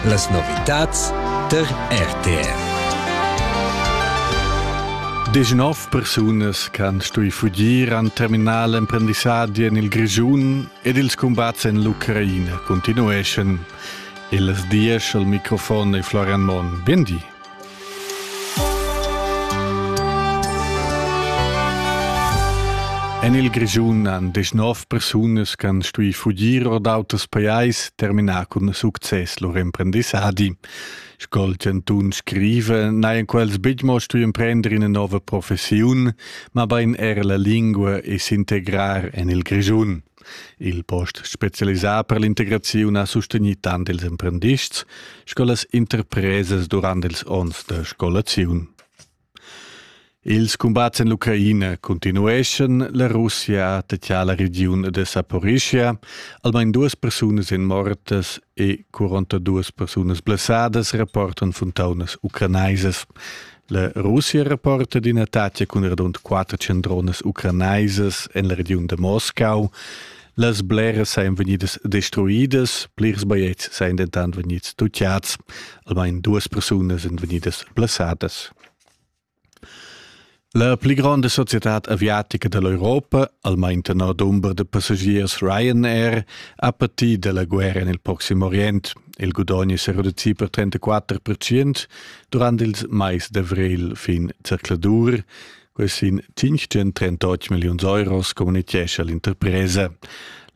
Las novitads tar RTV. Degnov persunas che han stuì fugir han terminà l'emprendissadi en il Grischun ed ils cumbats en l'Ucraina continueschan. Il dies al microfon è Florian Monn. Bien di. En il Grischun han deschnov persunas che han stuì fugir or d'auters pajais terminà cun success lur emprendissadi. Sco il Cantun scrive, n'hajan quels betg mo stuì emprender ina nova professiun, mabain er la lingua e s'integrar en il Grischun. Il post specialisà per l'integraziun ha sustegni tant ils emprendists sco las interpresas durant ils onns da scolaziun. Ils cumbats en l'Ucraina continueschan, la Russia tettia la regiun de Saporischia, almain duas persunas in mortas e 42 persunas blessadas, rapportan funtaunas ucrainaisas. La Russia rapporta d'ina tatga cun radund quatter cendronas ucranaisas en la regiun da Moscau. Las bleras sajan vegnidas destruidas, plirs baiets sajan dentant vegnids tutgads. Almain duas persunas èn vegnidas blessadas. La pli gronda societad aviatica da l'Europa, almain tenor dumber da passagiers Ryanair, ha patì da la guerra en il Proxim Orient. Il gudogn è sa reducì per 34%, Durant ils mais d'avrigl fin zercladur quels sin 538 milliuns euros communitgescha l'interpresa.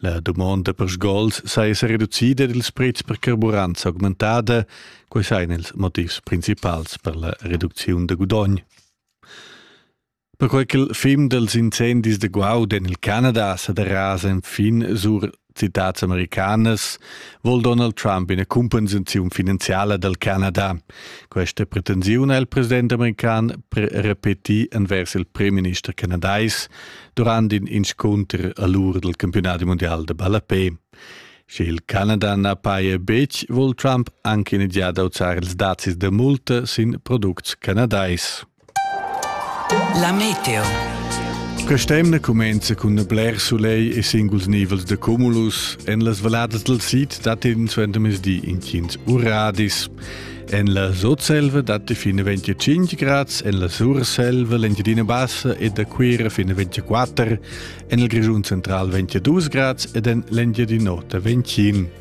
La dumonda per sgols sa esser reducida ed ils prezs per carburant augmentada, quei ein ils motivs principals per la reducziun da gudogn. Perquai ch'il film dals incendis da guaud en il Canada sa derasa enfin sur citads americanas, vol Donald Trump ina cumpensaziun finanziala dal Canada. Questa pretensiun ha il president american repetì envers il premierminister canadais durant in inscunter a l'ur del campionati mondial da ballapé. Sche il Canada na paja betg, vol Trump anche in giada auzar ils dazis da multa sin products canadais. La meteo. Quest'emna cumenza cun il bler soleil e singuls nivels de cumulus en las valladas del sid datin suenter mezdi intgins uradis. En la Sotselva datti fino 25 grads, en la Surselva l'Engiadina Bassa e da Cuira fino 24, en il Grischun central 22 grads ed en l'Engiadin'Ota 21.